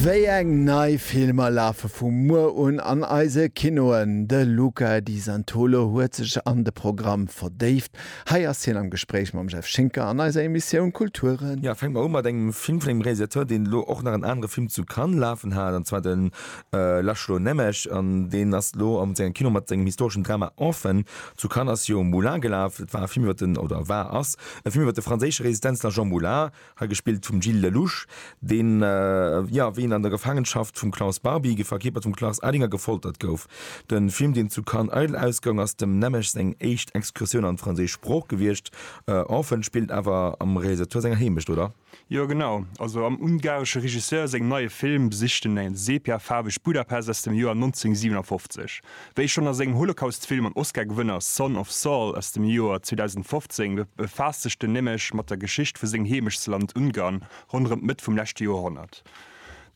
Wéi eng nei Filmer lafe vu muer un an eise Kinoen? De Luca Di Santolo huet sech an de Programm verdéift. Hei ass hien am Gespréich mam Jeff Schinker an eiser Emissioun Kulture. Jo, fänke mer u mat engem Film vun engem Realisateur, deen elo och nach en anere Film zu Cannes lafen hat, an zwar de László Nemes. An deen ass elo am sengem Kino mat sengem historeschen Drama Orphan. Zu Cannes ass jo Moulin gelaf. Et war e Film iwwer den, oder war, ass e Film iwwer de franséische Resistenzler Jean Moulin. Hei gespillt vum Gilles Lellouche, deen, jo, wéi en an der Gefaangenschaft vum Klaus Barbie, ge verkierpert vum Klaus Ellinger, gefoltert gouf. De Film, deen zu Cannes eidel ausgoung, ass dem Nemmesch seng éischt Excursioun an d'franséisch Sprooch gewiescht. Orphan spillt awer am Realisateur senger Heemecht, oder? Jo, genau. Also am ungaresche Regisseur sengem neie Film besicht en e sepiafaarwegt Budapest aus dem Joer 1957. Wéi schonn a sengem Holocaust-Film an Oscar-Gewënner Son of Saul aus dem Joer 2015 befaasst sech den Nemec mat der Geschicht vu sengem Heemechtsland Ungarn ronderëm d'Mëtt vum leschte Joerhonnert.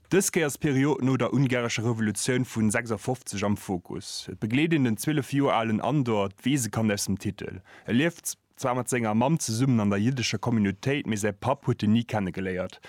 Dës Kéier ass d'Period no der ungarescher Revolutioun vu 56 am Fokus. Et begleet een den 12 Joer alen Andor, d'Weesekand aus dem Titel. E lieft. Zwar mat senger Mamm zesummen an der jiddescher Communautéit, mee säi Papp huet en ni kennegeléiert.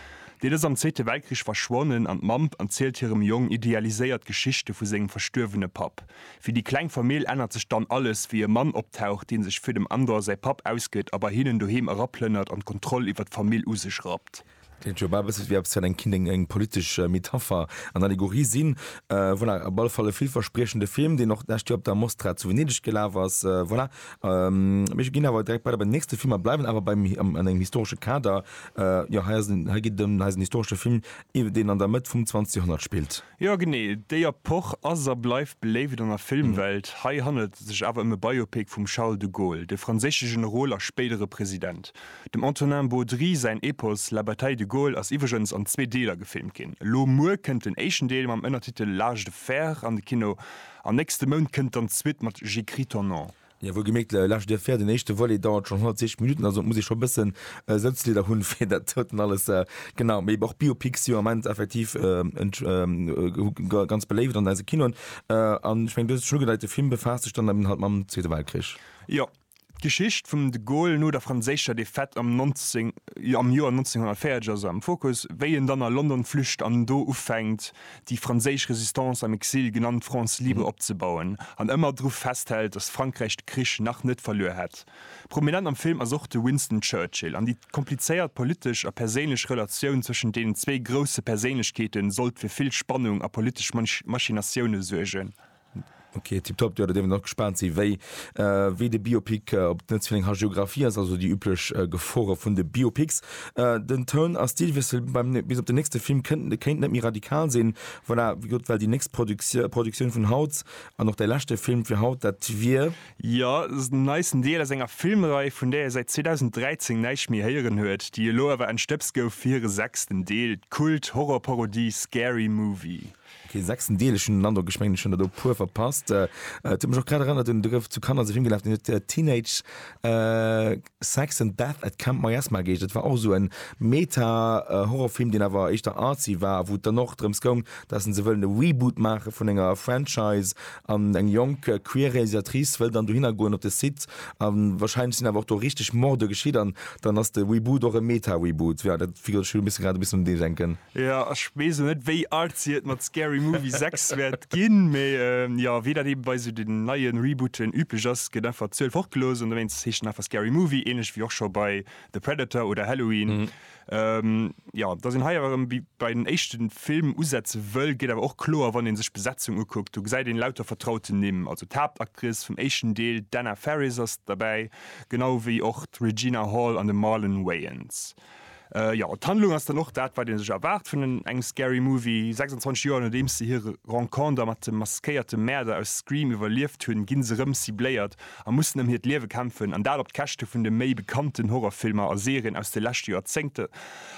Deen ass am Zweete Weltkrich verschwonnen an d'Mamm erzielt hirem Jong idealiséiert Geschichte vu sengem verstuerwene Papp. Fir déi kleng Famill ännert sech dann alles, wéi e Mann optaucht, deen sech fir dem Andor säi Papp ausgëtt a bei hinnen doheem eraplënnert an d'Kontroll iwwer d'Famill u sech rappt. Kéint jo bal bësse wéi eppes fir eng Kind, eng politesch Metapher an Allegorie sinn. Voilà, op alle Fall e villverspriechende Film, deen och d'lescht Joer op der Mostra zu Venedeg gelaf ass. Voilà, mir ginn awer direkt weider bei den nächste Film a bleiwen awer beim, an engem historesche Kader. Jo, hei ass en, hei geet et ëm eisen historesche Film, deen an der Mëtt vum 20. Joerhonnert spillt. Jo genee, déi Epoch ass a bleift beléift an der Filmwelt. Hei handelt et sech awer ëm e Biopic vum Charles de Gaulle, de franséische Generol a spéidere President. Dem Antonin Baudry säin Epos La bataille de Gaulle ass iwwregens an zwee Deeler gefilmt ginn. Elo muer kënnt den éischten Deel mam Ënnertitel L'âge de fer an de Kino an nächste Mount kënnt dann d'Suite mat J'écris ton nom. Jo, wougeméckt, laanscht dir féier. Den éischte Volet dauert schon 160 Minuten, also muss ee schon bëssen Sëtzlieder hun fir dat doten alles. Genau, mee och Biopics si jo am Ament effektiv ganz beléiwt an eise Kinoen, an ech mengen dëse schon ugedeite Film befaasst sech dann eben halt mam Zweete Weltkrich. Jo, d'Geschicht vum de Gaulle no der franséischer Defaite am Joer 1940 ass am Fokus, wéi en dann a London flücht an do ufänkt déi franséisch Résistance am Exil, genannt France libre, opzebauen an ëmmer dru festhält, datt Frankräich de Krich nach net verluer hätt. Prominent am Film ass och de Winston Churchill an déi komplizéiert politesch a perséinlech Relatioun zwëschent deenen zwee grousse Perséinlechkeete sollt fir vill Spannung a politesch Machinatioune suergen. Ok, tiptop, jo da dierf een och gespaant sinn, wéi wéi de Biopic op d'Netz vun eng Hagiographie ass, also déi üblech Gefore vun de Biopics. Den Toun a Stilwiessel beim bis op den nächste Film kënnt kéint net méi radikal sinn. Voilà, wéi gesot, well déi nächst Produktio Produktioun vun haut an och däi leschte Film fir haut, dat wier. Jo, den neisten Deel aus enger Filmrei, vun där ee säit 2013 näischt méi héieren huet, déi elo awer entstëbst gouf fir hire sechsten Deel, d'Kult-Horror-Parodie Scary Movie. Ok, sechsten Deel, ech hunn den Androck, ech mengen ech hunn der do e puer verpasst. Et huet mech och grad erënnert un, do gouf zu Kanner esou Film gelaf, deen huet Teenage Sex and Death at Camp Miasma geheescht. Dat war och esou e Meta-Horrorfilm, deen awer éischter artsy war a wou et dann och drëms goung, datt en esou wëllen e Reboot maache vun enger Franchise an eng jonk queer Realisatrice wëll dann dohinner goen op de Site a warscheinlech sinn awer och do richteg Morde geschitt an dann ass de Reboot och e Meta-Reboot. Jo, dat figure ech, elo muss ech grad e bëssen un dee denken. Jo, ech weess lo net wéi artsy et mat Scary Movie 6 wäert ginn, mee jo, wéi dat eebe bei sou den neien Rebooten üblech ass, gëtt einfach d'Zuel fortgelooss an dowéinst heescht en einfach Scary Movie, ähnlech wéi och scho bei The Predator oder Halloween. Jo, dass een hei awer erëm wéi bei den éischte Film usetze wëll, geet awer och kloer wann ee sech d'Besetzung ukuckt. Do gesäit een lauter vertrauten Nimm, also d'Haaptactrice vum éischten Deel, d'Anna Faris ass derbäi, genau wéi och d'Regina Hall an de Marlon Wayans. Jo, d'Handlung ass dann och dat, wat ee sech erwaart vun engem Scary Movie. 26 Joer nodeems se hire Renconter mat dem maskéierte Mäerder aus Scream iwwerlieft hunn, gi se rëm cibléiert a mussen ëm hiert Liewe kämpfen. An dat op d'Käschte vun de méi bekannten Horrorfilmer a Serien aus de leschte Joerzéngten,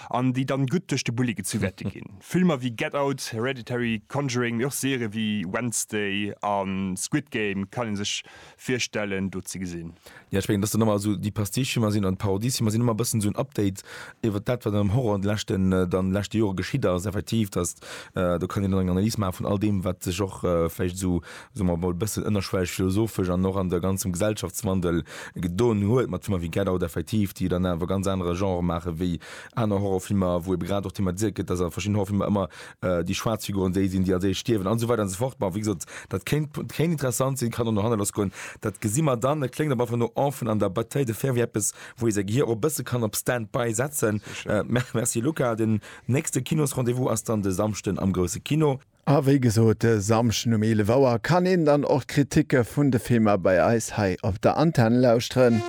an déi dann gutt duerch de Bulli gezu wäerte ginn. Filmer wéi Get Out, Hereditary, Conjuring, mee och Serië wéi Wednesday a Squid Game kann ee sech virstellen do ze gesinn. Jo, ech mengen, dass dann ëmmer esou déi Pastiche-Filmer sinn an d'Parodie-Filmer sinn ëmmer e bëssen esou en Update iwwert dat, wat am Horror an de leschten, dann leschte Jore geschitt ass. Effektiv, dass, do kann een dann eng Analys maache vun all deem, wat sech och vläicht esou, soe mer emol, e bëssen ënnerschwelleg philosophesch an och an de ganzem Gesellschaftswandel gedon huet mat Filmer wéi Get Out, effektiv, déi dann awer ganz anere Genre maache wéi aner Horror-Filmer, wou ebe grad och thematiséiert gëtt, dass a verschiddenen Horror-Filmer ëmmer déi schwaarz Figuren déi sinn, déi als éischt stierwen an esou weider an esou fort. Ma wéi gesot, dat kéint, kéint interessant sinn, kann och no hanne lass goen, dat gesi mer dann. Et kléngt awer einfach no Enfant an der Bataille de fer, wéi eppes, wou ee säi Gehier och e bësse kann op Stand-by setzen. Merci Luca. Den nächste Kinosrendez-vous ass dann de Samschden am Grousse Kino. A wéi gesot, de Samschden um 11 Auer kann een dann och d'Kriticke vun de Filmer bei eis hei op der Antenn lauschteren.